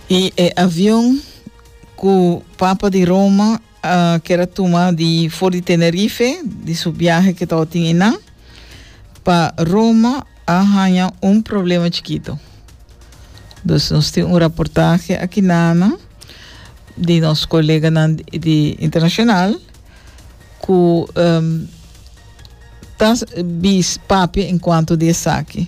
Y e avion cu Papa di Roma a ker a tuma di for di Tenerife, di su biahe que taba tin einan, pa Roma a haña un problema chikito. Dus nos tin un reportaje aki nana di nos coleganan di, di internacional cu em, ta s- bis papia en cuanto di esaki.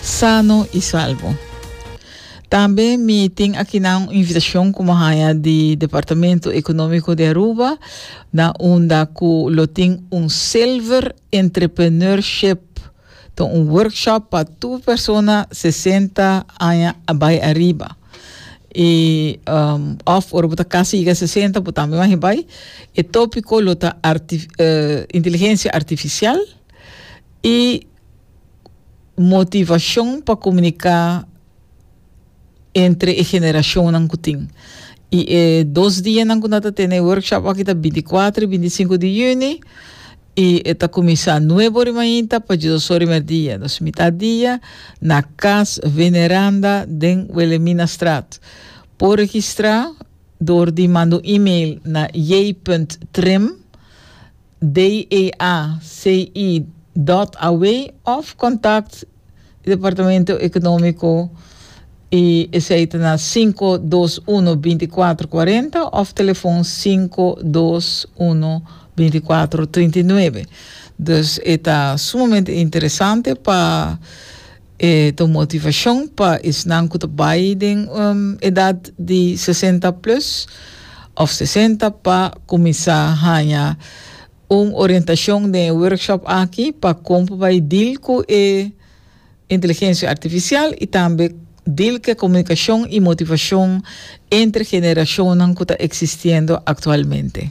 sano i salbo. Tambe mi tin akinan un invitacion ku mi haña di Departamento Ekonómiko di Aruba na unda ku lo tin un Silver Entrepreneurship, ta un workshop pa tur persona 60 aña a bai ariba. I um, of ora bo ta kasi yiga 60 bo tambe magi bai. E tópiko lo ta arti, eh, inteligencia artificial i motivacion pa comunica entre e generacionnan cu tin. Y e dos dianan cu nan ta tene e workshop aki ta binti cuatro y binti cinco di juni y e ta cuminsa nuebo ori mainta pa djis dos ori merdia. Dus mitat dia na Cas Veneranda den Wilhelminastraat. Por registra door di manda un email na j.trim. DEA, CI, dot away of contact di Departamento Economico y esey ta na cinco dos uno binticuatro cuarenta of telefon cinco dos uno binticuatro trinta y nuebe. Dus e ta sumamente interesante pa. E ta un motivashon pa esnan ku ta bai den edat di sesenta plus òf sesenta pa kuminsá haña un orientashon den e workshop aki pa kon pa bai dil ku e inteligensia artifisial i tambe dil ku e komunikashon i motivashon entre generashonnan ku ta eksistiendo aktualmente.